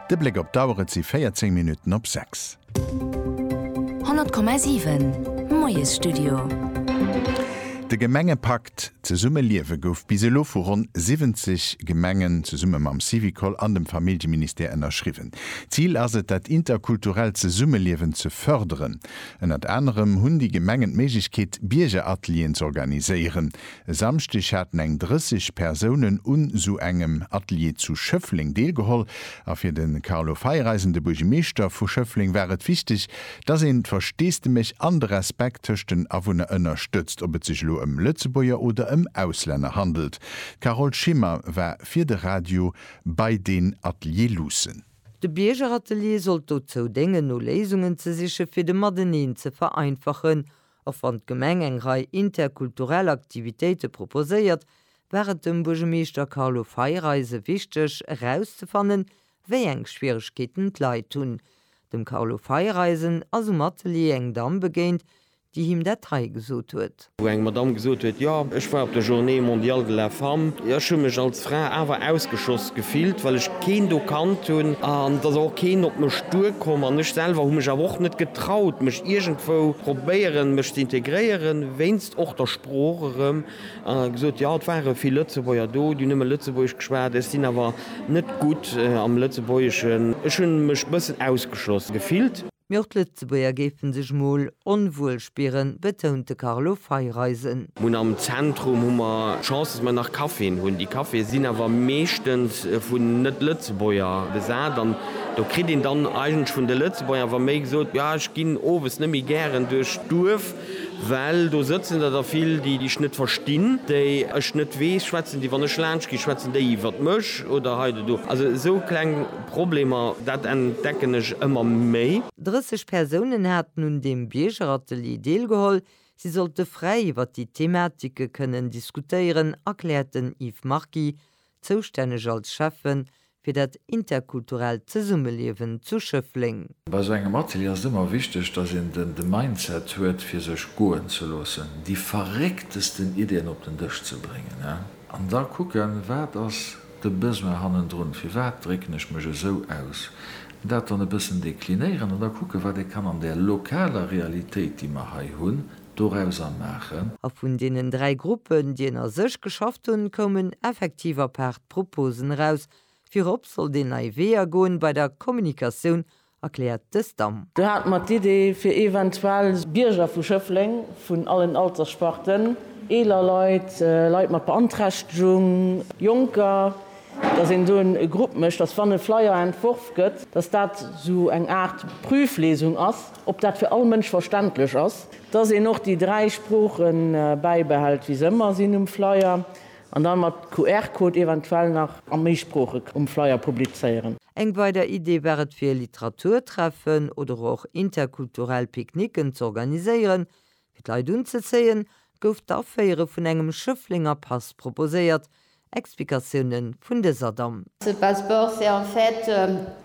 De Bléck op d'Auer, et si 14 Minutten op 6. 100,7, Moiesstudio. De Gemengepakt Zesumme liewe gouf bis elo vu ronn 70 Gemengen zesumme mam Syvicol an dem Familljeministère ënnerschriwwen. Zil ass et, dat interkulturellt Zesummeliewen ze fërderen. Ënnert anerem hunn déi Gemengen d'Méiglechkeet, Biergeratelieren z'organiséieren. E Samschdeg haten eng 30 Persounen un sou engem Atelier zu Schëffleng deelgeholl. A fir de Carlo Feiereisen, de Buergemeeschter vu Schëffleng, war et wichteg, datt een d'Versteesdemech an de Respekt tëscht den Awunner ënnerstëtzt, ob et sech elo ëm Lëtzebuerger oder ëm Auslänner handelt. D'Carole Schimmer war fir de Radio bei deen Atelier luussen. De Biergeratelier sollt dozou déngen, no Léisungen ze sichen, fir de Mateneen ze vereinfachen Och wann d'Gemeng eng Rei interkulturell Aktivitéite proposéiert, war et dem Buergemeeschter Carlo Feireise wichteg erauszefannen, wéi eng Schwieregkeeten d'Leit hunn. Dem Carlo Feireisen ass um Atelier eng Damm begéint, déi him dat hei gesot huet. Wou eng Madamm gesot huet, jo, ech war op der Journée mondiale de la femme, ech hu mech als D'Fra awer ausgeschoss gefillt, well ech keen do kannt hunn, an et ass och keen op mech duer komm, an ech selwer hu mech awer och net getraut, mech iergendwou probéieren, mech ze integréieren, wéinst och der Sprooch erëm, an gesot, jo, et ware vill Lëtzebuerger do, déi nëmme Lëtzebuergesch geschwat, ech sinn awer net gutt am Lëtzebuergeschen, ech hunn mech bëssen ausgeschloss gefillt. Mee och d'Lëtzebuerger géife sech mol onwuel spieren, betount de Carlo Feiereisen. Mun am Zentrum hu mer d'Chance, dass mer nach Caféen hunn. Déi Caféë sinn awer meeschtens vun Net-Lëtzebuerger besat an do kritt een dann eigentlech vun de Lëtzebuerger awer méi gesot, jo ech ginn owes net méi gären duerch d'Duerf, well do sëtzen der der vill, déi dech net verstinn, déi ech net weess, schwätzen déi, wann ech laanscht ginn, schwätzen déi iwwert mech oder hei oder do. Also esou kleng. Problemer, dat entdecken ech ëmmer méi. 30 Persounen haten un deem Biergeratelier deelgeholl. Si sollte fräi iwwer déi Thematike kënnen diskutéieren, erkläert den Yves Marky, zoustänneg als Schäffe fir dat interkulturellt Zesummeliewen zu Schëffleng. Bei esou engem Atelier ass et ëmmer wichteg, datt een de Mindset huet fir sech goen ze loossen, déi verrécktesten Iddien op den Dësch ze bréngen an da kucken, wat ass de Besoin hannendrun, firwat drécken ech mech esou aus, dat dann e bëssen deklinéieren an da kucken, wat ee kann an där lokaler Realitéit, déi mer hei hunn, dorauser maachen. A vun deenen dräi Gruppen, déi ënner sech geschafft hunn, koumen effektiv apaart Proposen eraus. Virop sollt een nei Weeër goen bei der Kommunikatioun erkläert de Stam. Do hate mer d'Idee, fir eventuell Bierger vu Schëffleng vun allen Alterssparten, eeler Leit, Leit mat Beanträchtegung, Jonker, dass een do e Grupp mécht, dass, wann e Flyer entworf gëtt, dass dat esou eng Aart Prüflesung ass, ob dat fir all Mënsch verständlech ass, dass een och déi dräi Sprooche bäibehält, wéi se ëmmer sinn um Flyer, An dann mat QR-Code eventuell nach a méi Sproochen um Flyer publizéieren. Eng weider Idee war et fir Literaturtreffen oder och interkulturell Picknicken z'organiséieren. Fir d'Leit unzezéien, gouf d'Aféiere vun engem Schëfflenger Pass proposéiert. Explikatioune vun dëser Damm.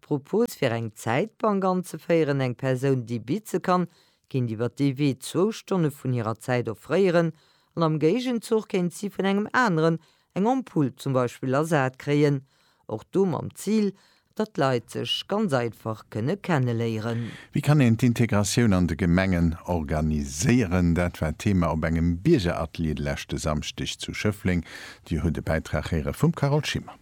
D'Propos fir eng Zäitbank anzeféieren, eng Persoun déi bitze kann, kéint iwwer dee Wee zwou Stonne vun hirer Zäit offréieren an am Géigenzuch kéint si vun engem aneren eng Ampull zum Beispill ersat kréien. Och do mam Zil, datt d'Leit sech ganz einfach kënne kenneléieren. Wéi kann een d'Integratioun an de Gemengen organiséieren? Dat war Thema op engem Biergeratelier de leschte Samschdeg zu Schëffleng. Dir hutt e Bäitrag héiere vum Carole Schimmer.